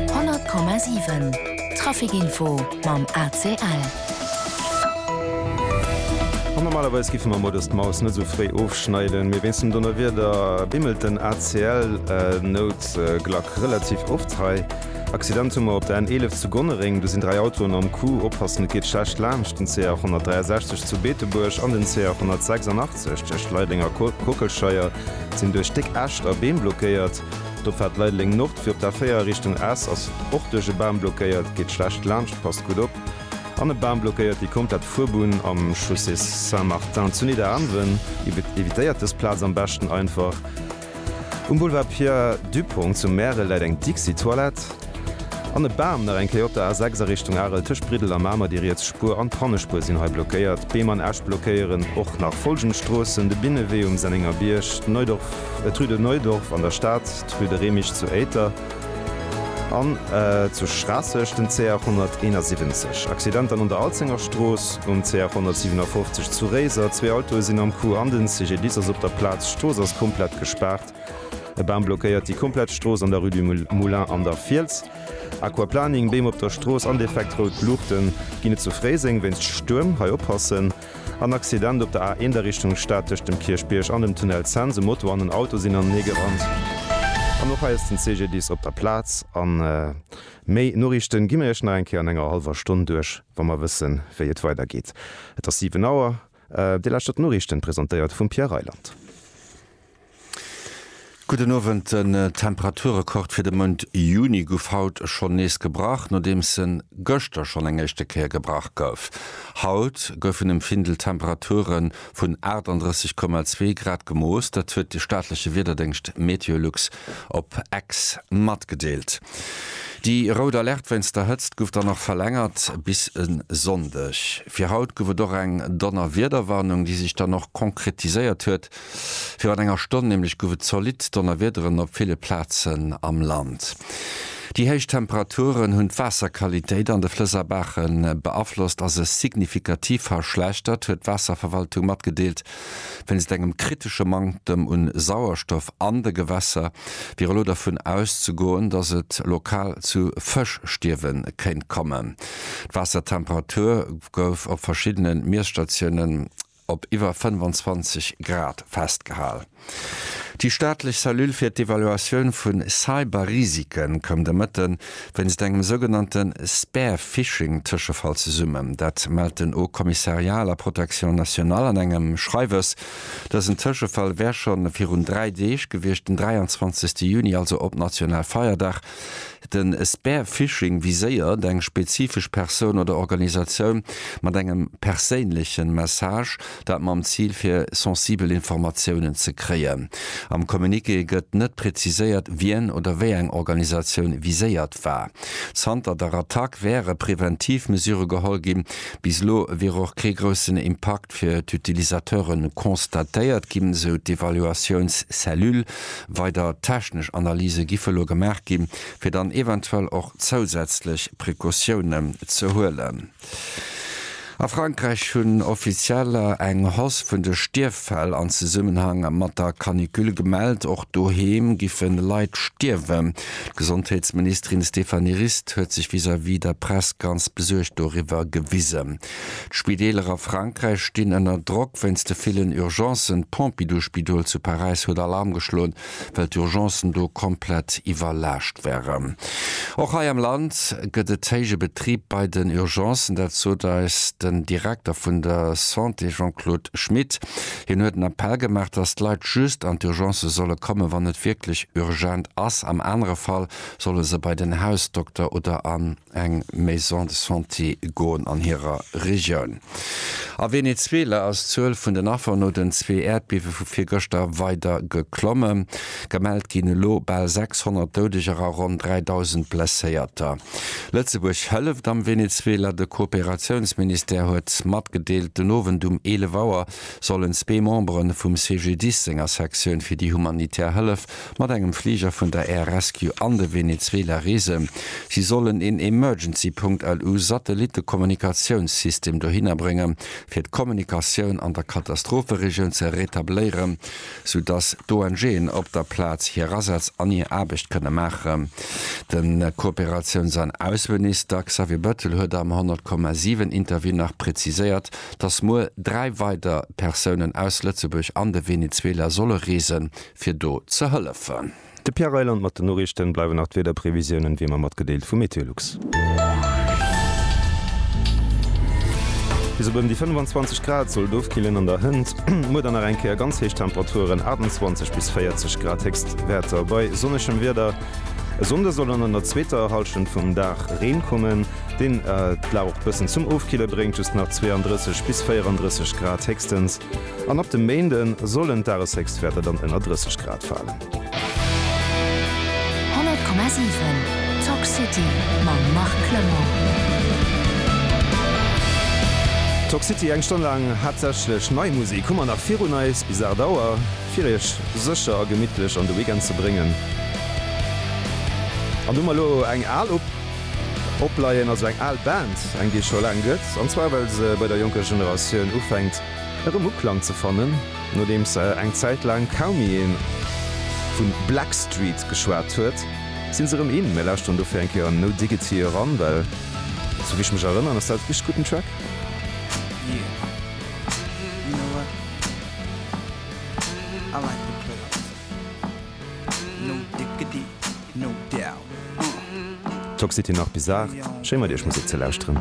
100,7 Trafic Info mam ACL. An normalerweis giffe mer mol dës d'Maus net esou fréi ofschneiden, mee wéinst dem Donnerwieder bimmelt den ACL Noutglack relativ oft hei. Accident hu mer op der N 11 zu Gonnereng, do sinn 3 Autoen am Coup. Oppassen, et geet schlecht laanscht den CR 163 zu Beetebuerg an den CR 186 tëscht Leidenger Kockelscheier sinn duerch déck Äscht a Beem blockéiert. Do fäert Leideleng Nord fir op der 4 a Richtung Esch, ass och duerch e Bam blockéiert, geet schlecht laanscht, passt gutt op, an e Bam blockéiert déi komplett Fuerbunn am Chaussée Saint-Martin zu Nidderaanwen, evitéiert dës Plaz am beschten einfach. Um Boulevard Pierre Dupong zu Märel läit eng Dixi-Toilette. An e Bam, nach eng Kéier op der A6 a Richtung Arel, tëscht Briddel a Mamer. Déi riets Spuer an d'Hannespuer sinn hei blockéiert. Beem an Äscht blockéieren och nach follgend Stroossen, de Binnewee um Sennengerbierg, d'Neudorf, d'rue de Neudorf an der Stad, d'rue de Remich zu Éiter an zu Schraasseg, den CR 171. Accidenter an un der Alzengerstrooss, um CR 157 zu Réiser, zwee Autoe sinn am Coup an den CGDIS ass op der Plaz. D'Strooss ass komplett gespaart. E Bam blockéiert déi komplett Strooss an der Rue du Moulin an der Fiels. Aquaplaning, Beem op der Strooss an defekt rout Luuchten ginn et zu Fréiseng wéinst Stuerm, hei oppassen. An Accident op der A1 a Richtung Stad tëscht dem Kierchbierg an dem Tunnel Cents, e Moto an en Auto sinn anenee gerannt. An och hei ass den CGDIS op der Plaz. A méi Noriichten gi mir iech nach eng Kéier an enger hallwer Stonn duerch, wa mer wëssen, wéi et weidergeet. Et ass 7 Auer. Déi lescht op d'Noriichten, presentéiert vum Pierre Reyland. Gudden Owend, Den Temperaturekord fir de Mount Juni guff haut schonn nees gebrach, nodeems en gëschter schonn eng éischte Kéier gebrach gouf. Haut goufen um Findel Temperature vun 38,2 Grad gemooss, dat huet de staatleche Wiederdéngscht Meteolux op X matgedeelt. Déi rout Alerte wéinst der Hëtzt guff dann och verlängert bis e Sonndeg. Fir haut guff et och eng Donnerwiederwarnung, déi sech dann och konkretiséiert huet. Virun enger Stonn nämlech gouf et zolidd Donnerwiederen op ville Plazen am Land. Déi héich Temperaturen hunn d'Waasserqualitéit an de Flëss a Baache beaflosst a se signifikativ verschlechtert, huet d'Waasserverwaltung matgedeelt. Wéinst engem kritesche Manktem u Sauerstoff an de Gewässer wier elo dovun auszegoen, datt et lokal zu Fëschstierwe kéint kommen. D'Waassertemperatur gouf op verschiddene Miesstatiounen op iwwer 25 Grad festgehal. Déi staatlech Cellule fir d'Evaluatioun vu Cyberrisike koum de Mëtte wéinst engem sougenannte Spearphishing-Tëschefall zesummen. Dat mellt den Haut Commissariat à la Protection nationale an engem Schreiwes. Dësen Tëschefall wär scho virun dräi Deeg gewiescht, den 23. Juni, also op Nationalfeierdag. Den Spearphishing viséiert eng spezifesch Persoun oder Organisatioun mat engem perséinlechen Message, dat mam Zil fir sensibel Informatiounen ze kréien. Am Communiqué gëtt net präziséiert wien oder wéi eng Organisatioun viséiert war. Zanter der Attack wäre präventiv Mesure geholl ginn. Bis elo wier och kee groussen Impakt fir d'Utilisateure constatéiert ginn, sou d'Evaluatiounscellule. Weider technesch Analyse giffe elo gemaach ginn, fir dann eventuell och zousätzlech Precautiounen ze huelen. A Frankräich hunn Offizieller eng Hausse vun de Stierffäll an Zesummenhang mat der Canicule gemellt. Och doheem giffe Leit stierwen. D'Gesondheetsministerin Stéphanie Rist huet sech vis-à-vis der Press ganz besuergt doriwwer gewisen. D'Spideeler a Frankräich stinn ënner Drock wéinst de villen Urgencen. D'Pompidou-Spidol zu Paräis huet Alarm geschloen, well d'Urgencen do komplett iwwerlaascht wären. Och hei am Land gëtt et héije Betrib bei den Urgencen. Dat sot eis den Direkter vun der Santé Jean-Claude Schmit. Hien huet en Appell gemaach, datt d'Leit just an d'Urgencë solle kommen, wann et wierklech urgent ass. Am anere Fall solle se bei den Hausdokter oder an. eng Maison de Santé goen an hirer Regioun. A Venezuela ass d'Zuel vun den Affer no den zwee Äerdbiewe vu virgëschter weider geklommen. Gemellt ginn elo bal 600 Doudeger a ronn 3.000 Blesséierter. Lëtzebuerg hëlleft am Venezuela. De Kooperatiounsministère huet matgedeelt, den Owend um 11 Auer sollen zwee Membere vum CGDIS senger Sektioun fir déi humanitär Hëllef mat engem Fliger vun der Air Rescue an de Venezuela reesen. Si sollen een Emergency Punkt, LU, Satellitte-Kommunikatiounssystem dohinner bréngen, fir d'Kommunikatioun an der Katastropheregioun ze retabléieren, sou datt d'ONGen op der Plaz hir Asätz an hir Aarbecht kënne maachen. De Kooperatiouns an Ausseminister Xavier Bettel huet am 100,7 Interview nach präziséiert, datt muer dräi weider Persounen aus Lëtzebuerg an de Venezuela solle reesen, fir do ze hëllefen. De Pierre Reyland mat den Noriichten. Bleiwen nach d'Wiederprevisiounen wéi emmer matgedeelt vu Meteolux. Bis op ëm déi 25 Grad soll et ofkillen an der Hënt. Muer dann nach eng Kéier ganz héich Temperaturen, 28 bis 40 Grad Héchstwäerter bei sonnegem Wieder. E Sonnde soll dann an der zweeter Hallschent vum Dag Reen kommen, deen d'Lag och bëssen zum Ofkille bréngt, just nach 32 bis 34 Grad héchstens. An ab dem Méinde sollen d'Dageshéchstwäerter dann ënner 30 Grad falen. 100,7 Talk City mam Marc Clement. Talk City, eng Stonn laang haaptsächlech nei Musek hu mer nach virun eis bis 8 Auer, fir iech sécher a gemittlech an de Weekend ze bréngen. An do hu mer elo eng al op opleien, also eng al Band, eng déi et scho laang gëtt, an zwar well se bei der jonker Generatioun ufänkt Erëm Uklang ze fannen, nodeems eng Zäit laang kaum méi ee vu Blackstreet geschwat huet, sinn se erëm in. Mir lauschteren dofir eng Kéier an No Diggity eran, well sou wéi ech mech erënneren ass dat e richteg gudden Track. Toxity nach Bizarre, schéi mat iech Musek ze lauschteren.